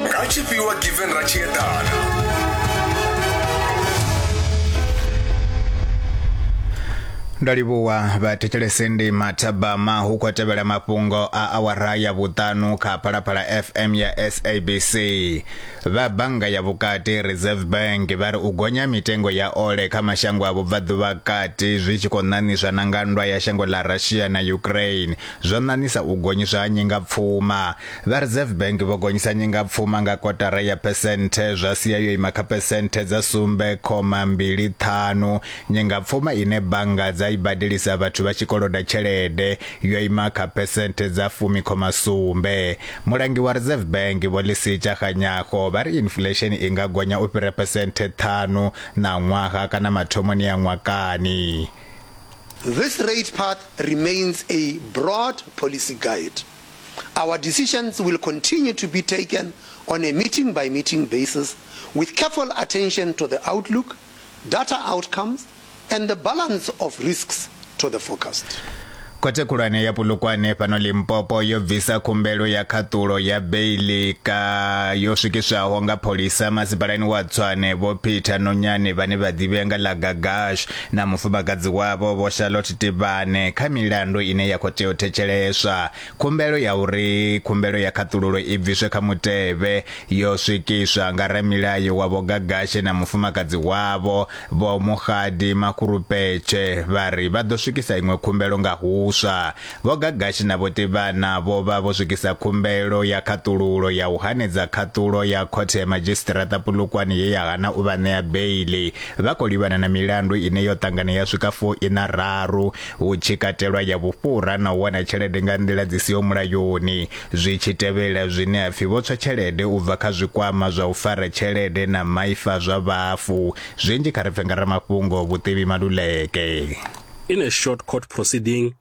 nga tshifhiwa given ra tshi eḓana ndo livhuwa vhathetshelesi ndi mathabama hu khou tevhela mafhungo a awara ya vhuṱanu kha phalaphala fm ya sabc vha bannga ya vhukati reserve bank vha ri u gonya mitengo ya ole kha mashango a vhubvaḓuvha kati zwi tshi khou ṋaṋiswa na nga nndwa ya shango ḽa russia na ukraine zwo ṋaṋisa u gonyiswa ha nyingapfuma Vha Reserve Bank vho gonyisa nyingapfuma nga kotara ya phesenthe zwa sia yo ima kha phesenthe dza sumbe khoma mbili ṱhanu. Nyingapfuma ine bannga dza i badelisa vhathu vha tshi koloda tshelede yo ima kha phesenthe dza fumi khoma sumbe. Mulangi wa Reserve Bank Vho Lisitsha Kganyago vha ri inflesheni i nga gonya u fhira phesenthe ṱhanu ṋaṅwaha kana mathomoni a ṅwakani. This rate path remains a broad policy guide. Our decisions will continue to be taken on a meeting-by-meeting basis with careful attention to the outlook, data outcomes, and the balance of risks to the forecast. Khothe khulwane ya Polokwane fhano Limpopo yo bvisa khumbelo ya khaṱulo ya beiḽi ka yo swikiswaho nga pholisa masipalani wa Tshwane Vho Peter Nonyane vhane vha ḓivhea nga ḽa Gagash na mufumakadzi wavho Vho Charlotte Tivhane kha milandu ine ya khou tea u thetsheleswa. Khumbelo ya uri khumbelo ya khaṱululo i bviswe kha mutevhe yo swikiswa nga ramilayo wa Vho Gagashe na mufumakadzi wavho Vho Mokgadi Makgurupetshe vha ri vha ḓo swikisa iṅwe khumbelo nga huswa. Vho Gagashi na Vho Tivhana vho vha vho swikisa khumbelo ya khaṱululo ya u hanedza khaṱulo ya Khothe ya Madzhisiṱiraṱa Polokwane ye ya hana u vha ṋea beiḽi. Vha khou livhana na milandu ine yo ṱangana ya swika fu iṋa raru, hu tshi katelwa ya vhufhura na u wana tshelede nga nḓila dzi siho mulayoni, zwi tshi tevhela zwine ha pfi vho tswa tshelede u bva kha zwikwama zwa u fara tshelede na maipfa zwa vhafu. Zwinzhi kha ri pfe nga ramafhungo Vhuthibi Maluleke. In a short court proceeding,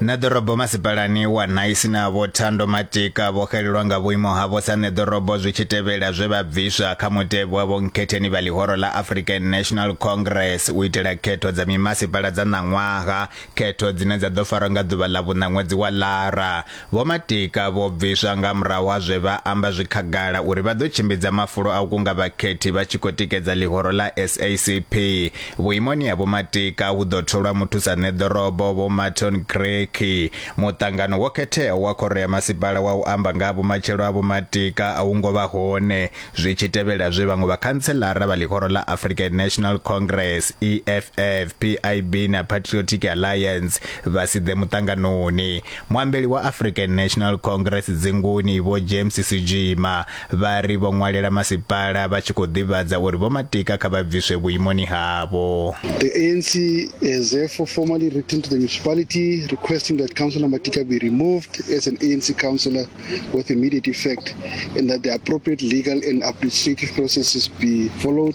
na ḓorobo masipalani wa naisi na vho thando matika vho xelelwa nga vhuimo havho sa ṋeḓorobo zwi tshi tevhela zwe vha bviswa kha mutevhe wa vhonkhetheni vha ḽihoro ḽa african national congress u itela khetho dza mimasipala dza ṋaṅwaha khetho dzine dza ḓo farwa nga ḓuvha ḽa vhuṋa ṅwedzi wa lara Vho Matika vho bviswa nga murahu ha zwe vha amba zwi khagala uri vha ḓo tshimbidza mafulo a u kunga vhakhethi vha tshi khou tikedza ḽihoro ḽa SACP. Vhuimoni ha Vho Matika hu ḓo tholwa muthusaṋeḓorobo Vho Marton Creaky. Muṱangano wo khetheaho wa Khoro ya Masipala wa u amba nga ha vhumatshelo ha Vho Matika a wu ngo vha hone, zwi tshi tevhela zwe vhaṅwe vhakhantselara vha ḽihoro ḽa African National Congress, EFF, PIB na Patriotic Alliance vha si ḓe muṱanganoni. muambeli wa african national congress dzinguni vho james sijima vha ri vho ṅwalela masipala vha tshi khou ḓivhadza uri vho matika kha vha bviswe vhuimoni havho The ANC has therefore formally written to the municipality requesting that Councillor Matika be removed as an ANC councillor with immediate effect and that the appropriate legal and administrative processes be followed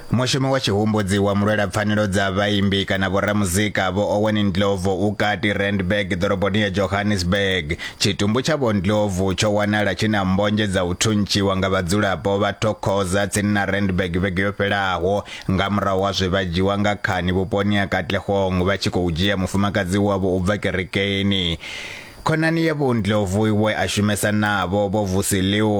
Mushumi wa tshihumbudzi wa mulwelapfanelo dza vhaimbi kana vhoramuzika Vho Owen Ndlovu u kati Randburg ḓoroboni ya Johannesburg. Tshitumbu tsha Vho Ndlovu tsho wanala tshi na mmbonzhe dza u thuntshiwa nga vhadzulapo vha Thokoza tsini na Randburg vhege yo fhelaho nga murahu ha zwe vha dzhiwa nga khani vhuponi ha Katlehong vha tshi khou dzhia mufumakadzi wavho u bva kerekeni. Khonani ya Vho Ndlovu we a shumesa navho, Vho Vusi Liu,